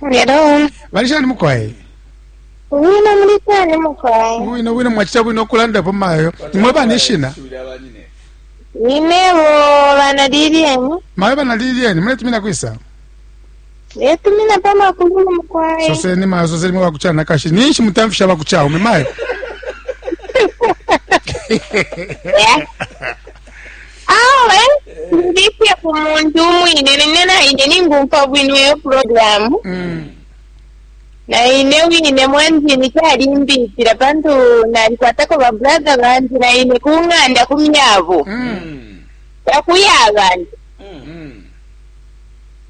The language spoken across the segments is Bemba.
Hello. bali shani mukwai Wino muli kwani mukwai? bwino bwino mwachita bwino okulandapo mayo imwe bana ishina Ninebo bana Lilian. mayo bana lilieni muletumina kwisa Letumina pa makulu mukwai. soseni mayo soseni mwe bakuchana kashi ninshi mutamfisha bakuchaume mayo Yeah. Awe ndifye ku muntu umwine nene naine ningumfwa bwino iyo program mm. naine wine mwanjini calimbitila pantu nalikwatako babrother bandi naine ku ng'anda ku myabo mm. takuya abantu mm.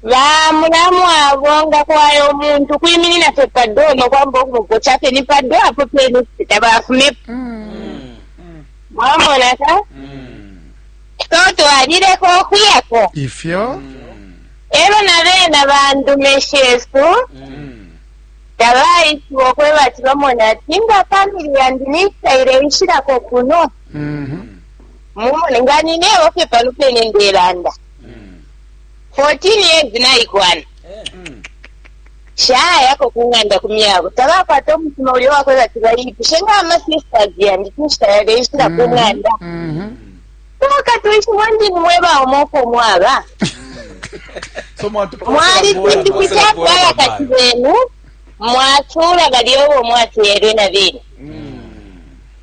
bamulamu abo nga kwayo omuntu kwiminina fe pado nokwamba okumugoca fe ni pado apo pene tabafumepo mm. Mwamona ka? So twalileka ukuyako. Ifyo? Elo na bena bandume shesu tabaishiba okweba ati bamona ati nga famili yandi nisaile ishilako kuno mumone nga ninebo fye pano pene ndelanda 14 years naikwana Nshayako ku ng'anda ku myabo. Tabakwata umutima ulya uwa kwebati baipushe nga ama sisters yandi cinshi tayabeishila ku ng'anda. Umo katwishibo ndi ni mwe baume uko mwaba. Mwali cimbi ku ca kwaya kati benu, mwacula balya ubo mwafyelwe na bene.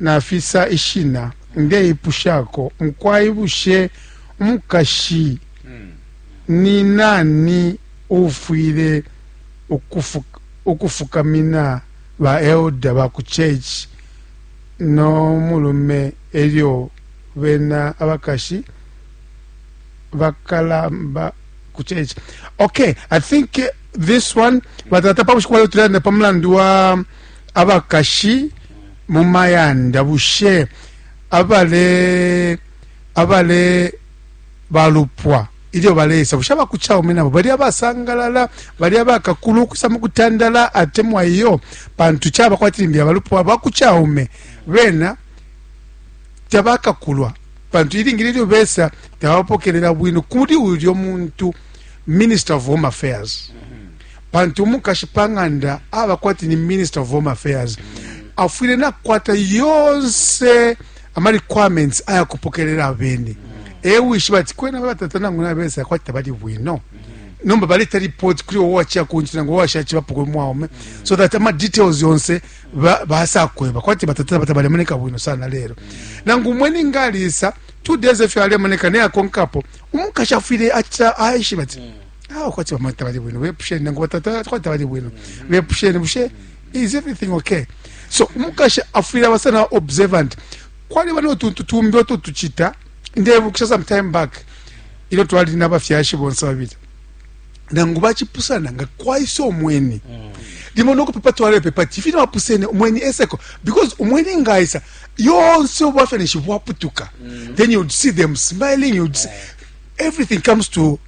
nafisa ishina, ndeipushako mukwai, bushe umukashi ni nani uufwile ukufukamina baeluda ba ku church no mulume e lyo bena abakashi bakalamba ku church? Okay, I think this one batata pa bushiku balotulanda pa mulandu wa abakashi mu mayanda bushe abale abale balupwa ilyo baleisa bushe abakucaume nabo bali abasangalala bali abakakulu ukwisa mu kutandala atemwa iyo pantu caba kwati limbi abalupwa bakucaume bena tabakakulwa pantu ilingi lilyo besa tabapokelela bwino kuli ulyo muntu minister of home affairs mm -hmm. Pantu umukashi pa ng'anda aba kwati ni Minister of Home Affairs, afwile nakukwata yonse ama requirements aya kupokelela abeni. E wishiba ati kwena batata nangu nabesa kwati tabali bwino. nomba baleta report kuli wowe wachiya kunchi nangu washachi bapukwe mwaume so that ama details yonse basakweba kwati batata bata balemoneka bwino sana lero nangu umweni ngalisa two days efyo alemoneka neyakonkapo umukashi afwile acha aishiba ati mm. Ah, kwati bamwe tabali bwino bepusheni nangu batata kwati tabali bwino mm. bepusheni bushe is everything okay so umukashi afwile aba sana observant kwaliba notuntu tumbi oto tuchita ndebukisha some time back ilyo twali nabafyashi bonse babili nangu bachipusana nga kwaisa omweni mm. limo nokupepa twalepepa ti fino bapusene omweni eseko because omweni ngaisa yonse obwafya neshi bwaputuka mm. then you'd see them smiling you'd see, everything comes to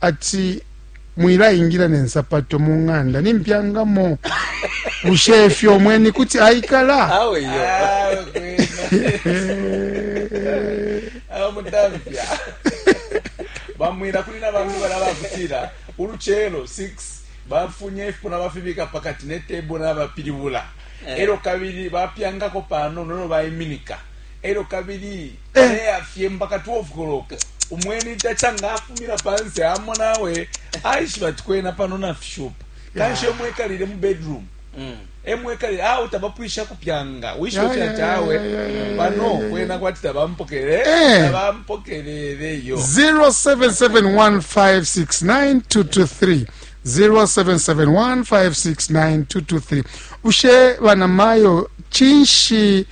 ati, Mwilaingila ne nsapato mu ng'anda nimpyangamo. Bushe ifyo umweni kuti aikala? Awe iyo. Awe mutamfya. Bamwira kuli na bantu balabakutira uluchelo 6 bafunye ifuna bafibika pakati ne table na bapilibula. Eh. Ero kabili bapyangako pano nono baiminika. Ero kabili Aleyafye mpaka 12 koloko. Umweni taca nga afumina panse amona awe aishiba ati kwena pano nafishupa. Kanshi emo ekalile mu bedroom. Mm. Emo ekalile awe tabapwisha kupyanga. Wishiba fye ati awe pano kwena kwati tabampokele. Eh. Tabampokelele yo. 0771569223 0771569223 bushe banamayo cinshi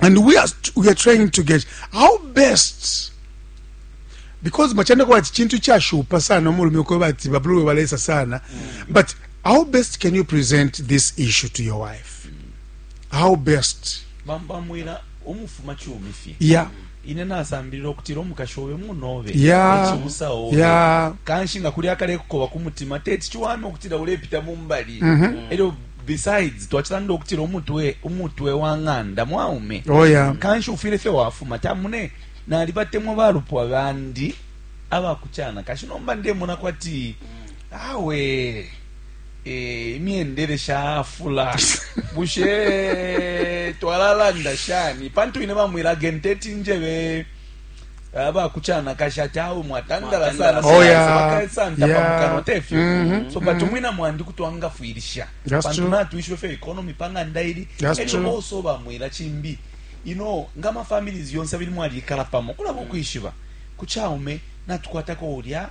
and we are, we are trying to get how best because machanda kwa chintu cha shupa sana umulume kwa bati babluwe walesa sana mm. but how best can you present this issue to your wife mm. how best bamba mwila umufuma chumi fye yeah mm. ine nasambilira okutira omukashi obe munobe ekibusa obe kanshi nga kuli akale kukoba ku mutima teti kiwame okutira ulepita mu mbali mhm. eryo Besides, twacilanda ukutila umutwe umutwe wa ng'anda mwaume. Oh, yeah. Kanshi ufwile fye wafuma ta mune nalibatemwa balupwa bandi abakucana kashi nomba ndemona kwati awe eh, imyendele shafula bushe twalalanda shani pantu ine bamwila genteti njebe aba kuchanakashi ati awe mwatandala sana oh, yeah. bakasanta yeah. pamukanwa tefyo mm -hmm. so but mm-hmm. mwina mwandi kuti wangafwilisha pantu natwishiwe fyo economy pang'anda ili elyo oso bamwila chimbi you know nga ma families yonse abili mwalikala pamo kulaba ukwishiba kuchaume natukwatako ulya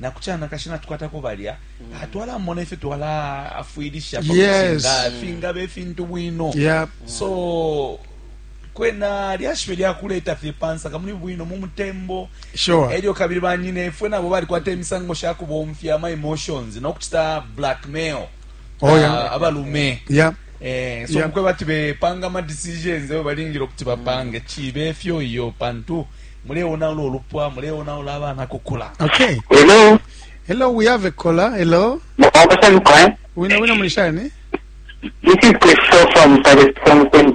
na kuchana kashi na tukwata ko balya mm. atwala mona ife twala afwilisha yes. finga be fintu bwino yep. so Kwena lyashi fye lya kuleta fye pa nsaka muli bwino mu mutembo Sure. e lyo kabili banyinefwe nabo balikwata imisango sha kubomfya ama emotions no kucita blackmail Oh, yeah. ah, abalume Yeah. Eh, so Yeah. mukweba ati bepanga ama decisions ayo balingile ukuti bapange chibe efyo iyo pantu muleonaula olupwa muleonaula abana kukula Okay. Hello, Hello, we have a caller. Hello. Mkwapa Samkwa. Wina wina mulishani? This is Christopher from Paris, from Queens.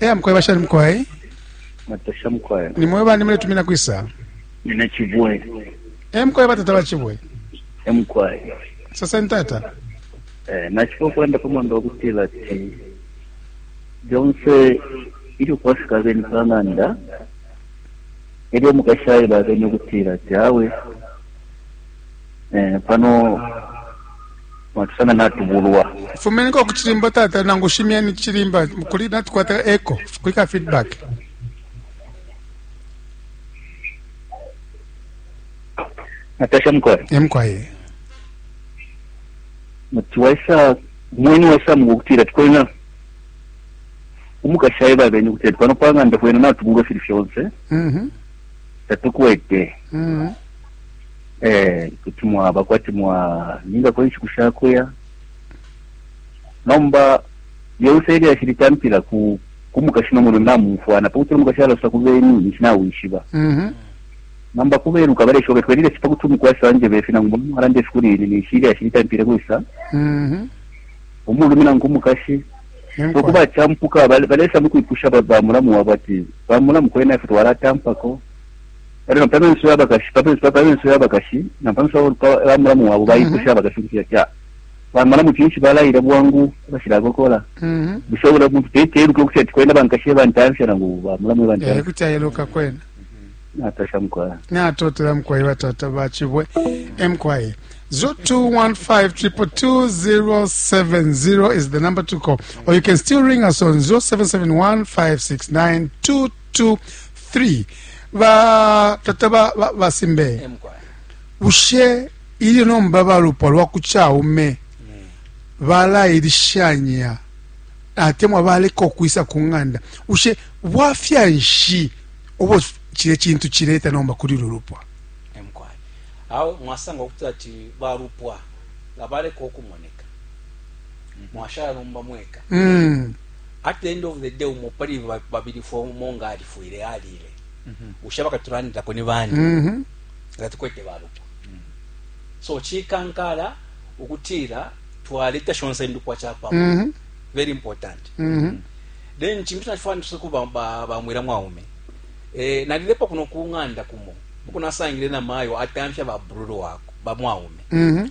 eya mukweba shani mukwai matasha mukwai nimwe bani muletumina kwisa nina chibwe e mukwai batata ba chibwe e mukwai sasa ntata eh, nachipo kwenda pamwamba wakutila ti byonse ili ukwafika abeni pang'anda elyo mukashaila abeni okutila ti awe Eh, pano watusanga natubulwa fumeniko ku cilimba tata nangu shimyeni cilimba kuli natukwata echo kulika feedback natasha mkwaye emkwaye muti waisa mweni waisa mukukutira tikwena umukashi aye babene kuti ati pano pang'anda kwena natubulwa fili fyonse mhm tatukwete mhm eh, kuti mwaba kwati mwalingako inshiku sha kuya nomba lyonse ilyashi litampila ku kumukashi nomuno namumfwana pakuti omukashi alasa ku beni ninshi nawishiba mhm. nomba kubeluka baleshoka twelile si pakuti omukwasi wanje befi nangu mulume walanda efi kuli ini ninshi ilyashi litampile kwisa mhm. omulume nangu omukashi okuba campuka balesa mukwipusha bamulamu wabo ati bamulamu kwena ife twalatampako Elyo na pamenso yabakashi pamenso pamenso yabakashi na pamenso ya mulamu wabo baipusha abakashi kuti kya bamalamu kinshi balaila bwangu bashilakokola bushe bula muntu teteluka kuti ati kwenda bankashi bantamfya nangu bamulamu bantamfya kuti ayeluka kwena natasha mkwaya natotela mkwaya batata bachibwe mkwaya Zo 215 is the number to call. Or you can still ring us on 0771 569 2 3 ba tata ba, ba, ba simbe emkwaya bushe ilyo nomba balupwa lwa ku caume balailishanya atemwa baleka okwisa ku ng'anda bushe bwafya nshi obwo cile cintu cileta nomba kuli lu lupwa emkwaya awo mwasanga ukuti ati balupwa nga baleka okumoneka mwashala nomba mweka mm. at the end of the day umo pali babili fo umo nga alifwile alile mm -hmm. ushaba katulandilako ni bani mm -hmm. nga tukwete balupwa mm -hmm. so chikankala ukutila twaleta shonse indupwa chapamo mm -hmm. very important mm -hmm. then chintu chachifana tusiku ba, ba, ba mwira mwaume eh, nalilepo kuno kunganda kumo ukunasangile na mayo atamfya ba brulu wako ba mwaume mm -hmm.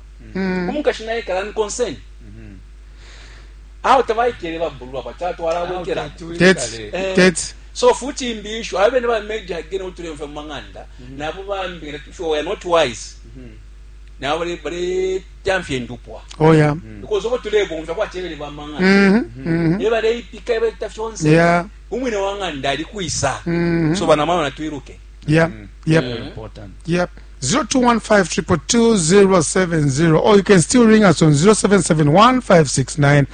mm. umukashi naye kala ni concern mm-hmm. awo tabaikele babulwa bati atwalabwekela eh. so futi imbi ishu abe ne ba media again utulemfa mu manganda mm-hmm. nabo bambi nga tusho we are not wise mm-hmm. nabo bale bale tamfye ndupwa oh yeah because obo tulebomfa kwa chebele ba manganda ne bale ipika bale tafyonse yeah umwine wanganda ali kuisa so bana mama natwiruke Yeah. Mm. Yep. Very important. Yep. 0215220770 or you can still ring us on 0771569223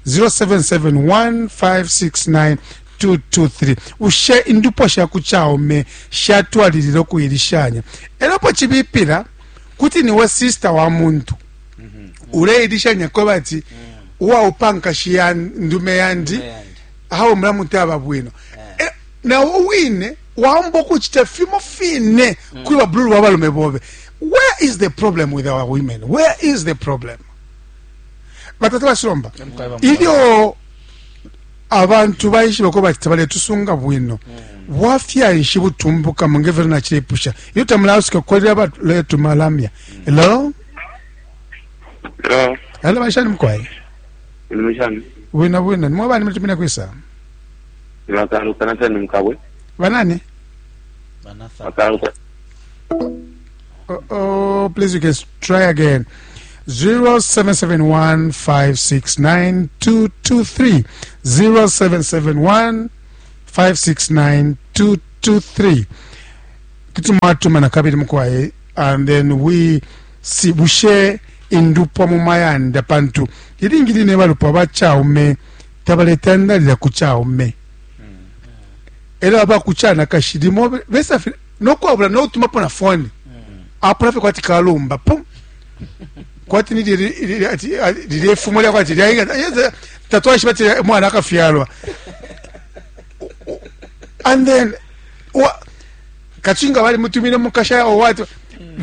0771569223 223 ushe indupwa sha ku chaume shatwalilila okuyilishanya elo po chibipila kuti niwe sister wa muntu mhm. uleyilishanya kweba ati uwaupankashi ya ndume yandi awo mulamu taba bwino na wo wine waamba ukucita fimo fine mm. kuli babululu ba balume bobe where is the problem with our women where is the problem batata basilomba ilyo abantu baishiba ko bati tabaletusunga bwino mm. bwafya nshi butumbuka mu ngevero nacilepusha iyo tamulasuka kukolera baletu malamya mm. hello hello bashani mukwaye bwina bwina nimwe bani mulitumine kwisa Makaluka na tani mkabwe. Banani? Banathan. Makaluka. Oh, oh, please you can s- try again. 0771569223 0771569223 kuti mwatuma na kabili mukwaye and then we si bushe indupwa mu mayanda pantu ilingi line balupwa bachaume tabaletandalila ku caume elo aba ku canakashi limo besa fye nokwabula notumapo na foni apula fye kwati kalumba pum kwati ni lilye fumo lya kwati lyaika tatwaishiba ti mwana akafyalwa and then kachinga bali mutumine mukasha or what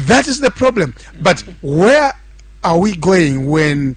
that is the problem but where are we going when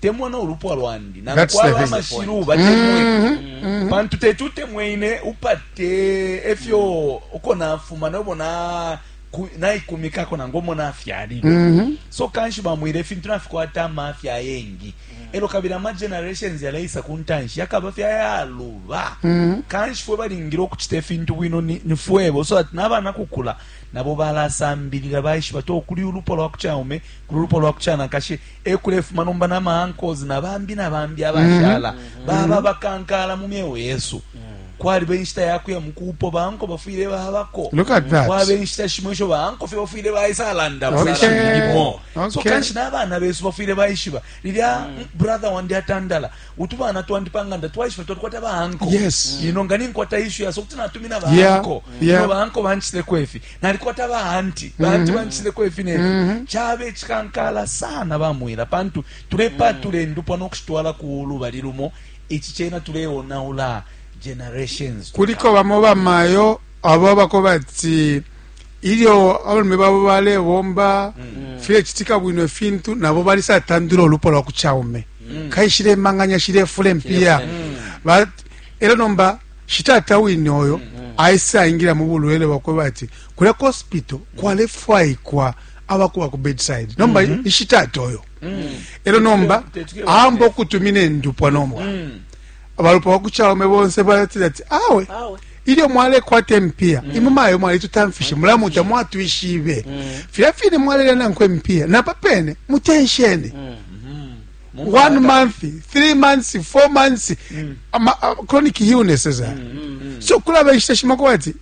temwa no lupwa lwandi nangu kwaba amashilu batemwe mm-hmm. mm-hmm. pantu teti utemwe ine upate efyo uko nafuma nobo na naikumikako nangu omo nafyalilwe mm-hmm. so kanshi bamwire ifintu nafikwata amafya ayengi elo kabili ama generations yalaisa ku ntanshi yakaba fyayaluba kanshi fwe balingire okucita ifintu bwino ni fwebo so ati nabana kukula nabo balasambilila baishiba to kuli ulupwa lwa kucaume kuli ulupwa lwa kucanakashi ekulefuma nomba na maankles na bambi na bambi mhm. abashala mm -hmm. baba mhm. bakankala mu myeo yesu mm -hmm. kwaliba enshita yakuya mukupo banko bafwile babako kwaba enshita shimo isho banko fye bafwile baisalanda busalalimo okay. okay. so kanshi n'abana besu bafwile baishiba lilya mm. brother wandi atandala utu bana twandi panganda twaishiba twalikwata banko yes. ino nga ninkwata ishu yaso kuti natumina banko yeah. yeah. no banko banchiteko ifi nalikwata ba anti ba anti mhm. banchisileko ifi nefi mhm. chabe chikankala sana bamwila pantu tulepatula mhm. endupwa nokushitwala ku lubali lumo ichi chena tuleonaula generations kuliko bamo bamayo abo abako bati ilyo abalume babo balebomba file chitika bwino fintu nabo balisatandula ulupo lwa kuchaume kaishile manganya shile fule mpia era nomba shitata wine oyo aisaingila mu bulwele bwakweba ati kulya ku hospital kwalefwaikwa abakuba ku bedside nomba mm -hmm. ishitata oyo mm. elo nomba amba okutumina endupwa nomba mm. abalupwa bakucaume bonse batila ati awe, awe. ilyo mwalekwata empiya mm. imwe mayo mwalitutamfishe mm. mulamu tamwatwishibe mm. filya fine mwalelya nankwe empiya napa pene muteshene mm. Mu mwaka. one month three months four months ama- a- chronic illnesses are. so kulaba inshita shimako ati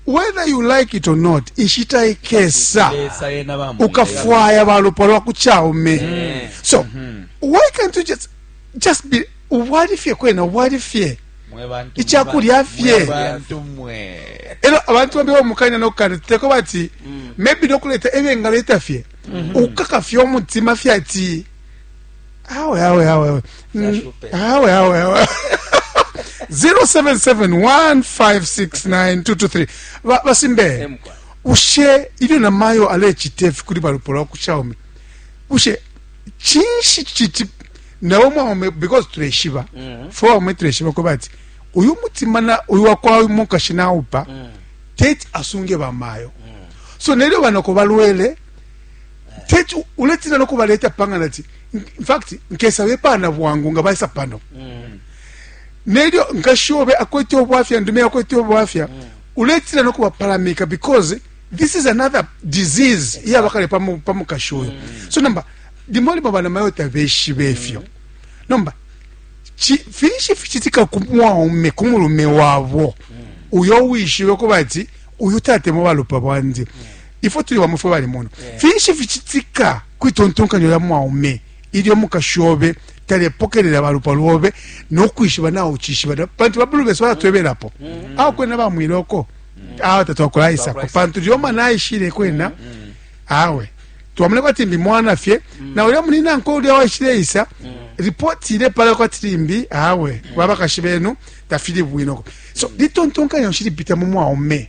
whether you like it or not inshita ikesa Lesa yena bamu- ukafwaya balupwa lwaku chaume so why can't you just just be ubwali fye kwena ubwali fye Mwe bantu Ichakulya mwe ba- fye. mwe bantu mwe elo abantu bambi bamukanya nokukana tuteko bati maybe nokuleta ebyengaleta fye ukaka fye omutima fye ati awe awe awe awe Mm, awe awe awe 0771569223 Ba- basimbe Emkwa. bushe ilyo namayo alecita ifi kuli balupo lwa ku xiaomi bushe cinshi citi nawe mwaume because tuleshiba Mhm. fwe waume tuleshiba kuba ati uyu mutima na uyu wakwa uyu mukashi naupa Mm. teti asunge bamayo so nelyo banoko balwele teti uletina nokubaleta panga nati infact nkesa bepana bwangu nga baisa pano mm. nelyo nkashi obe akwete obwafya ndume akwete obwafya mm. uletina nokubapalamika because this is another disease iyabakale pamukashi oyo mm. so nomba limo limo bana mayo tabeshibe efyo nomba finshi fichitika ku mwaume ku mulume wabo uyo wishibe kuba ati uyu tatemo balupa bwandi mm. ifwe tuli bamwe fwe balimona yeah. finshi ficitika kwitontonkanyo lya mwaume ilyo mukashi obe talepokelela balupwa lwobe nokwishiba nawe ucishiba pantu babulu besu balatwebelapo mm -hmm. awo kwena bamwile oko mm -hmm. awo tatwakulaisako pantu lyo mwana aishile kwena mm -hmm. awe twamune kwati mbi mwana fye mm -hmm. na ulya munina nko ulya waishile isa mm -hmm. ripoti ile pala kwati limbi awe mm -hmm. babakashi benu tafili bwinoko so mm -hmm. litontonkanya ushilipita mu mwaume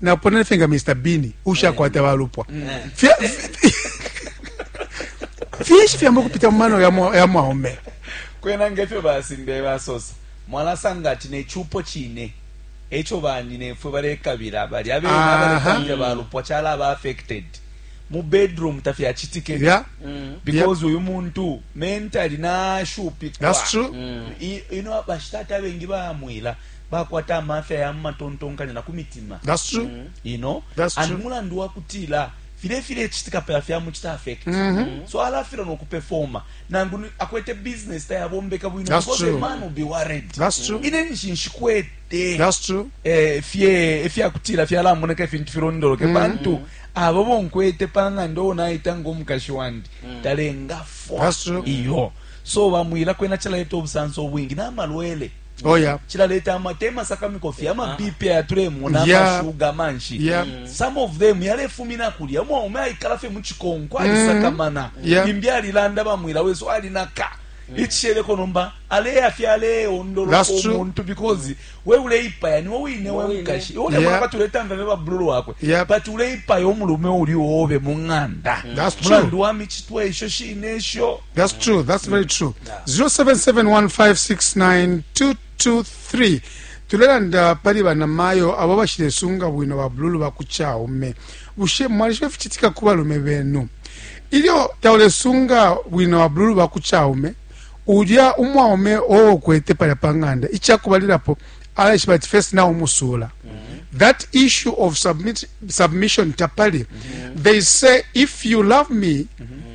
naponene fye nga mr bini ushakwata balupwa finshi fyamba okupita mu mano ya mwaume kwena ngefyo basimbe basosa mwalasanga ati nechupo chine echo banyinefwe balekabila bali abena balekabila balupwa chala aba affected mu bedroom tafyachitike yeah. mm. because uyu yeah. muntu mentally nashupikwa that's true mm. ino bashitata bengi bamwila bakwata amafya ya mu matontonkanyo na ku mitima ino and mulandu wa kutila file filecitika pela fyamucita affect mm -hmm. so alafila nokupefoma nangu akwete business tayabombeka bwino because a man will be worried ine nishi nshikwete eh, fye efyakutila fyalamoneka ifintu filondoloke mm -hmm. pantu abo bonkwete pang'anda owo naita ngomukashi wandi mm -hmm. talengafwa iyo so bamwila kwena cilaeta obusanso obwingi namalwele Oh, yeah. chilaleta amate emasakamiko fye amabipi ah. aya tulemona amashuga manshi yeah. Mm. some of them yalefumina kulya umwaume aikala fye muchikonko mm-hmm. alisakamana yeah. imbi alilanda bamwila wesu alinaka mm. ichisheleko nomba aleya fye aleyondoloka omuntu because we uleipaya niwe wine we mukashi iwe ulemona yeah. bati uletanga ne babululu wakwe yeah. but uleipaya omulume uli obe mu ng'anda mm. mulandu wa michitwa esho shine esho that's true that's very true 0771569223 tulelanda pali banamayo abo bashilesunga bwino babululu ba ku caume bushe mwalishiba ificitika ku balume benu ilyo taulesunga bwino babululu ba ku caume ulya umwaume owo kwete palya pa ng'anda icakubalilapo alaishiba ati first now umusula mm -hmm. that issue of submit, submission tapali mm -hmm. they say if you love me mm -hmm.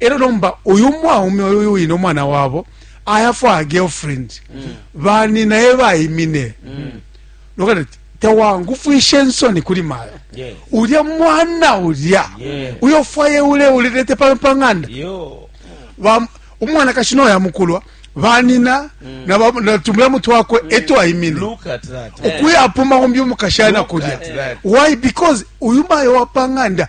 e lyo nomba uyu mwaume uyu wine umwana wabo ayafwa a girlfriend mm. bani naye bayimine mm. nokati tewangufwishe nsoni kuli mayo yes. ulya mwana ulya yeah. uyofwaye ule ulilete pano pa ng'anda umwana kashi noyo amukulwa banina mm. natumula mutwe wakwe mm. eto ayimine ukuya apuma umbi umukashana kulya why because uyu mayo wapanganda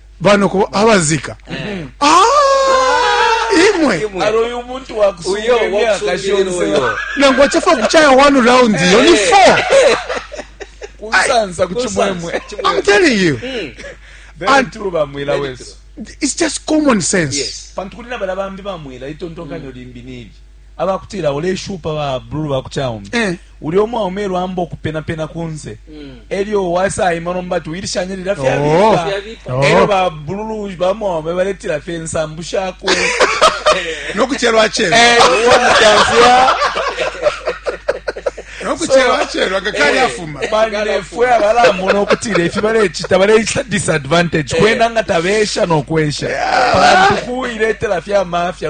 banoko abazika ah, imwe nangu achafa kuchaya one round iyo ni four kusansa kuchimwemwe i'm telling you mm. and bamwila wesu it's just common sense yes. pantu kuli na bala bambi bamwila itontonkanyo mm. limbi nibi aba kutila uleshupa ba blue ba ku chaume eh. ulya umwaume elyo amba ukupena pena kunse mm. elyo wasaima nomba ati uilishanye lila fyabipa oh. oh. elyo ba blue ba mwaume baletila fye nsambu shakwe nokuchelwa chelwa eh, nokuchelwachelwa ngakali eh, afuma banefwe abalamona okutira efi balecita balecita disadvantage eh. kwenda nga tabesha nokwesha pantu kuiletera fyamafya